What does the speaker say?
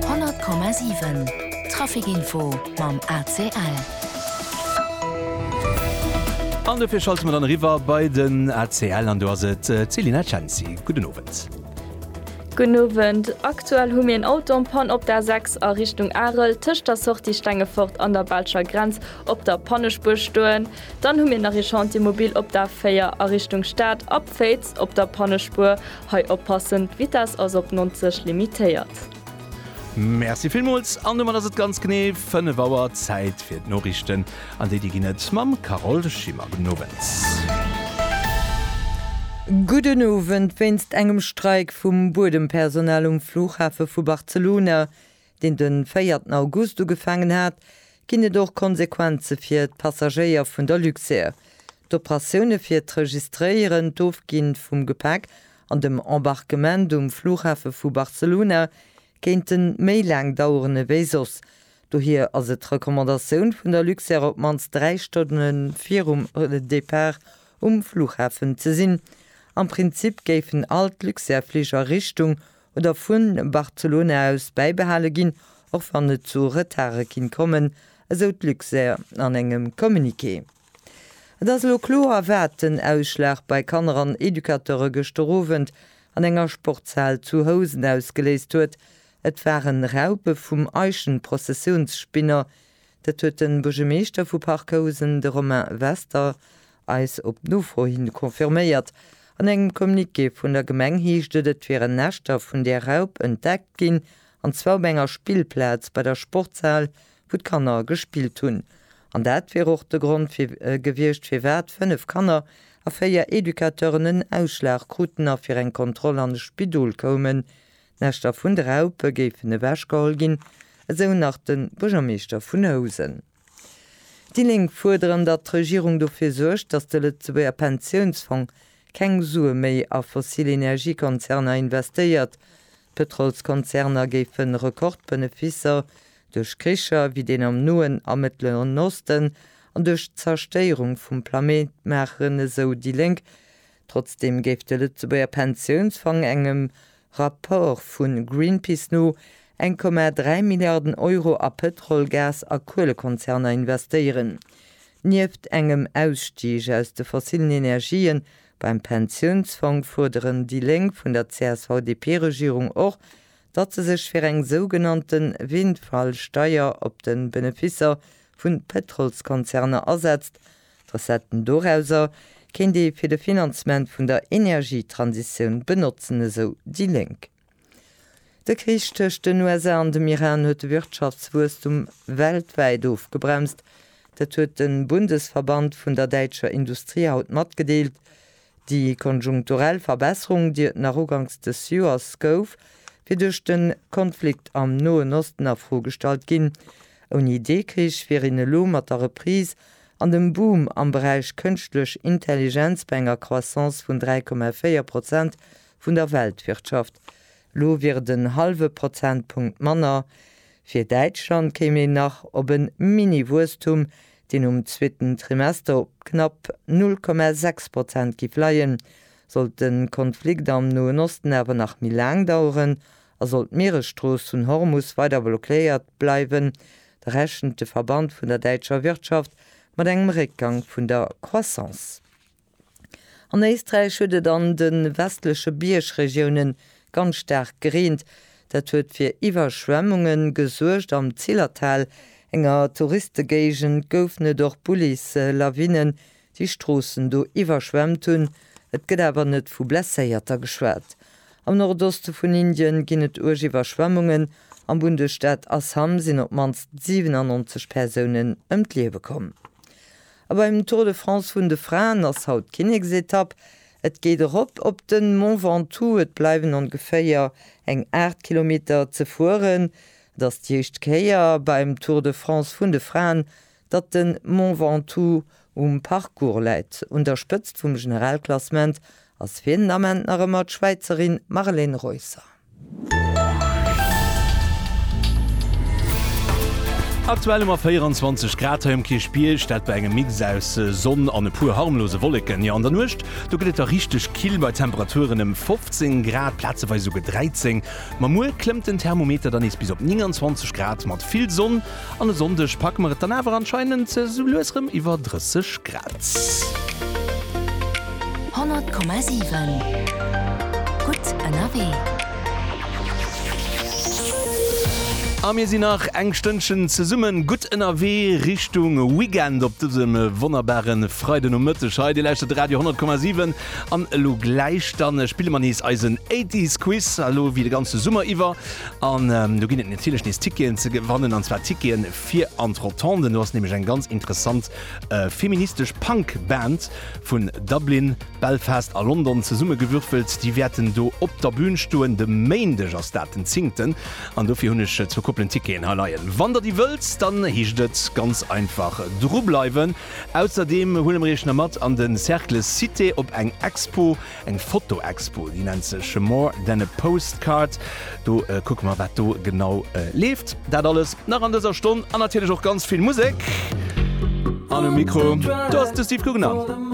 100,7 Traficinfo mam ACL. An dofir schalte mer dann eriwwer bei den ACL an do ass et d'Selina Cenci. Gudden Owend. Gudden Owend. Aktuell hu mir en Auto en Panne op der A6 a Richtung Arel tëscht der Sortie Stengefort an der belscher Grenz op der Pannespuer stoen. Dann hu mir nach ee Chantier mobil op der A4 a Richtung Stad a Féiz op der Pannespuer. Hei oppassen, d'Vitess ass op 90 limitéiert. Merci villmools an domat ass et ganz genee 5 Auer, Zäit fir d'Noriichten an déi déi ginn et mam Carole Schimmer. Gudden Owend. Gudden Owend. Wéinst engem Streik vum Buedempersonal um Flughafe vu Barcelona deen de véierten August ugefaangen hat, ginn et och Konsequenze fir d'Passagéier vun der Luxair. D'Operatioune fir d'Registréieren, d'Ofgi vum Gepäck an dem Embarquement um Flughafe vu Barcelona kéinte méi laang daueren ewéi soss. Dohier ass et d'Recommandatioun vun der Luxair op d'mannst 3 Stonne virum Depart um Flughafen ze sinn. Am Prinzip géifen all d'Luxair-Fliger Richtung oder vu Barcelona aus bäibehale ginn, och wann et zu Retarde kinnt kommen, esou d'Luxair an engem Communiqué. Et ass elo kloer, wat den Ausschlag bei Kanner an Educateure gëschter Owend an enger Sportshal zu Housen ausgeléist huet, Et waren Raupe vum Eichenprozessiounsspinner, Dat huet de Buergermeeschter vu Parc-Housen, de Romain Wester, eis op Nofro hin confirméiert. An engem Communiqué vun der Gemeng heescht et, et wieren Näschter vun där Raup entdeckt ginn, an zwar op enger Spillplaz bei der Sportshal, wou d'Kanner gespillt hunn. An dat wier och de Grond gewiescht, firwat fënnef Kanner a véier Educateuren en Ausschlag kruten a fir eng Kontroll an e Spidol koumen. D'Näschter vun de Raupe géifen ewechgeholl ginn, esou nach de Buergermeeschter vun Housen. Déi Lénk fuerderen, datt d'Regierung dofir suergt, datt de Lëtzebuerger Pensiounsfong keng Sue méi a fossil Energiekonzerner investéiert. D'Pëtrolskonzerner géife Rekordbeneficer duerch Kricher wéi deen am Noen a Mëttleren Osten an duerch d'Zerstéierung vum Plaméit maachen, esou déi Lénk. Trotzdeem géif de Lëtzebuerger Pensiounsfong engem Rapport vu Greenpeace no 1,3 Milliarden Euro a Pëtrol-, Gas a Kuelekonzerner investéieren. Nieft engem Ausstig aus de fossillen Energië beim Pensiounsfong fuerderen déi Lénk vun der CSV-DP-Regierung och, datt se sech fir eng sougenannte Windfall-Steier op de Benefisser vu Pëtrolskonzerner asetzt D'Recetten dorauser kéint ee fir de Finanzement vun der Energietransitioun benotzen, esou déi Lénk. De Krich tëscht den USA an dem Iran huet de Wirtschaftswuesstum weltwäit ofgebremst. Dat huet de Bundesverband vun der däitscher Industrie haut matgedeelt. Déi konjunkturell Verbesserung, déi et nach uganks des Joers gouf, wier duerch de Konflikt am Noen Osten a Fro gestallt ginn. Ouni dee Krich wier een elo mat der Reprise an dem Boom am Beräich Kënschtlech Intelligenz bei enger Croissance vun 3,4 Prozent vun der Weltwirtschaft. Elo wier et en hallwe Prozentpunkt manner. Fir Däitschland kéim een nach op e Mini-Wuesstum, deen um zweeten Trimester op knapp 0,6 Prozent giff leien. Sollt de Konflikt am Noen Osten awer nach méi laang daueren a sollt d'Mieresstrooss vun Hormus weider blockéiert bleiwen, da rechent de Verband vun der däitscher Wirtschaft mat engem Réckgang vun der Croissance. An Éisträich huet et an de westleche Biergregioune ganz staark gereent. Dat huet fir Iwwerschwemmunge gesuergt. Am Zillertal, enger Touristegéigend, goufen et och Bullis, Lawinnen, déi Stroossen do iwwerschwemmt hunn. Et gëtt awer net vu Blesséierter geschwat. Am Nordoste vun Indien ginn et uerg Iwwerschwemmungen. Am Bundesstaat Assam sinn op d'mannst 97 Persounen ëm d'Liewe komm. A beim Tour de France vun de Fraen ass haut d'Kinneksetapp. Et geet erop op de Mont Ventoux, et bleiwen ongeféier eng 8 Kilometer ze fueren. Et ass déi éischt Kéier beim Tour de France vun de Fraen, datt de Mont Ventoux um Parcours läit. Un der Spëtzt vum Generalklassement Ass fir en Ament nach ëmmer d'Schwäizerin Marlene Reusser. Aktuell hu mer 24 Grad hei um Kierchbierg, dat bei engem Mix aus Sonn an e puer harmlose Wolleken. Jo, an der Nuecht, do gëtt et da richteg kill bei Temperaturen ëm 15 Grad, plazeweis esouguer 13. Ma muer klëmmt den Thermometer dann nees bis op 29 Grad mat vill Sonn. An e Sonndeg packe mer et dann awer anscheinend sou lues rem iwwer 30 Grad. 100,7 gutt ënnerwee. A mir sinn nach eng Stënnchen zesumme gutt ënnerwee Richtung Weekend op dësem wonnerbare Freidenomëtteg hei. Dir lauschtert Radio 100,7 an elo gläich dann spille mer nees eisen Eighties Quiz, elo wéi de ganze Summer iwwer. An do ginn et natierlech nees Ticketen ze gewannen, an zwar Ticketen fir an d'Rotande. Do ass nämlech eng ganz interessant feministesch Punk-Band vun Dublin, Belfast a London zesummegewürfelt. Déi wäerten do op der Bün stoen. De Méindeg ass dat, den Zingten. An dofir hunn ech zwou Koppelen Ticketen hei leien. Wann der déi wëllt, dann heescht et ganz einfach drubleiwen. Ausserdeem huele mer iech nach mat an de Cercle Cité op eng Expo. Eng Fotoexpo, déi nennt sech More than a postcard. Do kucke mer, wat do genau leeft. Dat alles nach an dëser Stonn an natierlech och ganz vill Musek. An um Mikro, do ass de Steve Guggenann.